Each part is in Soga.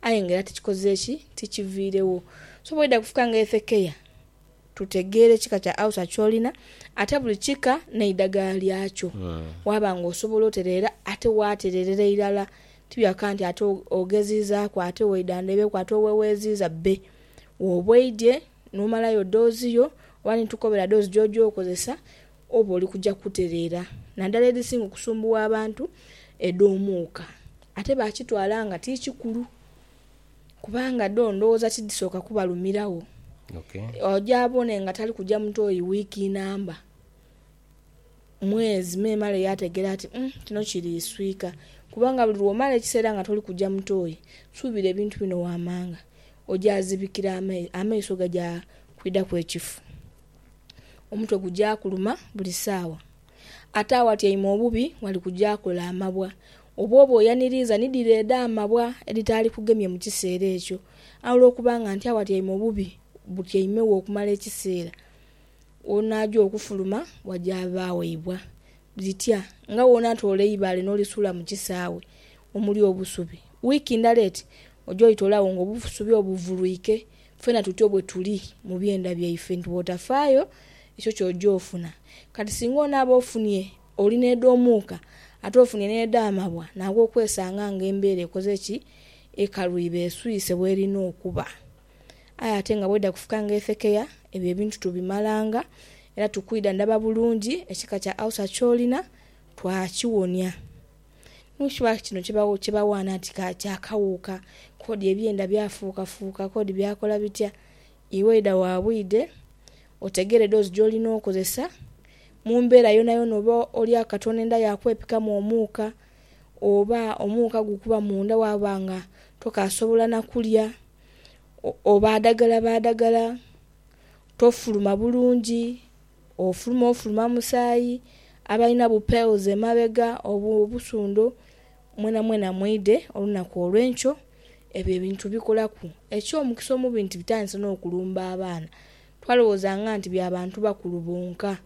Aye nga era tikikoze ki? Tikiviiregho. So bw'oidha kufuuka nga Hesekia, tutegeera ekika kya Ausa ky'olina, ate buli kika n'eidagala lyakyo. Waaba nga osobola otereera, ate waatereerera irala. Ti bya kukoba nti ate ogeziizaaku, ate waidha ndheebeku, ate oweweeziiza. Bbe wooba oidhye n'omalayo doozi yo, oba ni tukukobera doozi gy'oja okozesa. Oba oli kuja kutereera nadala edhisinga okusumbuwa abantu edh'omuuka. Ate bakitwala nga ti kikulu kubanga dho ndhoghoza tidhisooka kubalumiragho. Oja abone nga tali kuja mu toyi wiiki namba, mwezi memale yaategeera ati umm kino kiri iswika. Kubanga buli lw'omala ekiseera nga toli kuja mu toyi, suubira ebintu bino waamanga ojaazibikira amaiso, amaiso gaja kwidhaku ekifu. omutwe gugya kuluma buli saawa. Ate awatyaime obubi ghali kugya kola amabwa. Obw'oba oyaniriiza ni dhire edh'amabwa edhitaali kugemye mu kiseera ekyo. Aye olw'okuba nga nti awatyaime obubi butyaimegho okumala ekiseera, onaagya okufuluma wagya baaweibwa. Bitya nga w'onaatoola eibaale n'olisuula mu kisaawe omuli obusubi? Wiiki ndala eti oja olitoolagho ng'obusubi obuvulwike Fena tutyo bwe tuli mu byenda byaife nti bw'otafaayo ekyo ky'oja ofuna. Kati singa onaaba ofunie oli n'edh'omuuka ate ofunie n'edh'amabwa naawe okwesanga nga embeera ekoze ki? Ekalwiba, eswise bw'erina okuba. Aye ate nga bw'eidha kufuka nga efekeya, ebyo ebintu tubimalanga era tukwidha ndaba bulungi ekika kya Ulcer ky'olina twakiwonia. Ni ki lwaki kino kye bawaana nti kya kawuuka? Kodi ebyenda byafuukafuuka? Kodi byakola bitya? Iwe idha wa bwidhe, otegere doozi gy'olina okozesa. Mu mbeera yoonayoona oba olya akatono enda yaakwepikamu omuuka, oba omuuka gukuba munda waaba nga tokaasobola na kulya, obaadagala baadagala, tofuluma bulungi. Ofuluma ofuluma musaayi, abalina bu pearls emabega, obu, obusundho, mwenamwena mwidhe olunaku olw'enkyo. Ebyo ebintu bikolaku. Eky'omukisa omubi nti bitandise n'okulumba abaana. Twalowoozanga nti bya bantu bakulu bonka.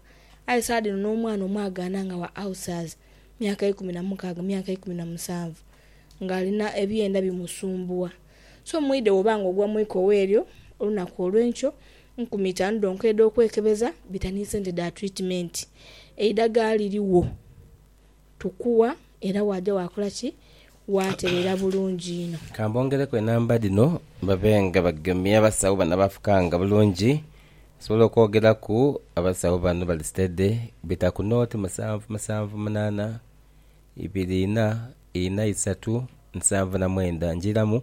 Aye saagha dhino n'omwana omwagaana nga wa ulcers, myaka ikumi na mukaaga, myaka ikumi na musanvu, ng'alina ebyenda bimusumbuwa. So mwidhe bw'oba nga ogwa mu ikowa eryo olunaku olw'enkyo, Nkumi itaanu dhonka edh'okwekebeza bita ni sente dha twitimeenti. Eidhagala lirigho, tukugha era waaja waakola ki? Waaterera bulungi inho. Ka mbongereku enamba dhino babe nga bagemye abasawo bano abaafukanga bulungi. Nsobola okwogeraku abasawo bano bali sitede bita ku nooti musanvu musanvu munaana ibiri ina ina isatu nsanvu na mwenda. Njiiramu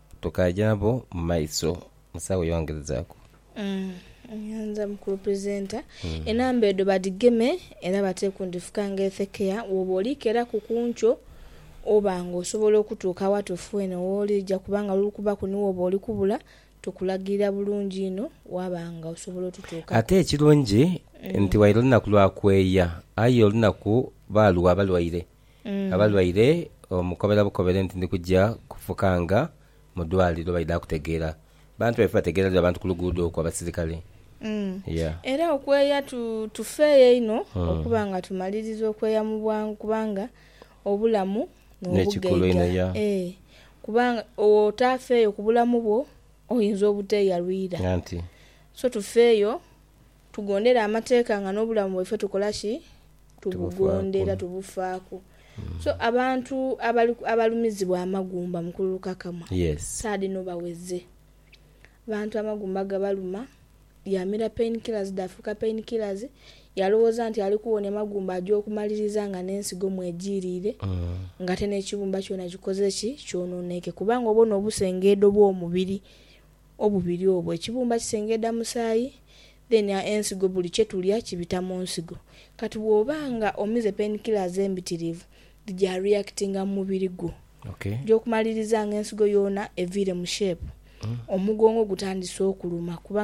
Tukaja nabo mu maiso. Musawo yongerezaaku. Nyanza mukulu presenter. Enamba edho badhigeme era bateeke ku ndhifuka nga ethekeya woba oliikeraku ku nkyo oba nga osobola okutuuka awatuufu weene wooli oja kuba nga lulukubaku ni woba oli kubula tukulagirira bulungi inho waba nga osobola otutuukaku. Ate ekirungi nti waire lunaku lwa kweeya aye olunaku baalugha abalwaire. abalwaire omukobera bukobere nti ndi kugya kufukanga mu dwaliro baidha kutegeera. Bantu baife bategeera dha bantu ku luguudo okwo abasirikale. Yeah. Era okweya tu, tufeeyo inho okuba nga tumaliriza okweya mu bwangu kubanga obulamu N'ekikulu n'obugaiga. einho, yeah. Ee. Kubanga bw'otaafeeyo ku bulamu bwo, oyinza obuteeyalwira. Anti. So tufeeyo. Tugondera amateeka nga n'obulamu bwaife tukola ki? Tubugondera, tubufaaku. So, abantu abalumizibwa amagumba mu kululukakamwa, saa dhino baweze. Abantu amagumba gabaluma, yaamira pain killers dhaafuuka pain killers, yaalowooza nti ali kuwonia magumba aja okumaliriza nga n'ensigo mwejiiriire ng'ate n'ekibumba kyona kikoze ki? Kyonooneike. Kubanga obona obusengeedo bw'omubiri. Obubiri obwo ekibumba kisengedha musaayi then ensigo buli kyetulya kibita munsigo kati bwoba nga omize pain killers embitirivu dhija reactinga mumubiri gwo ejokumaliriza nga ensigo yoona eviire mu shape omugongo gutandise okuluma kubanga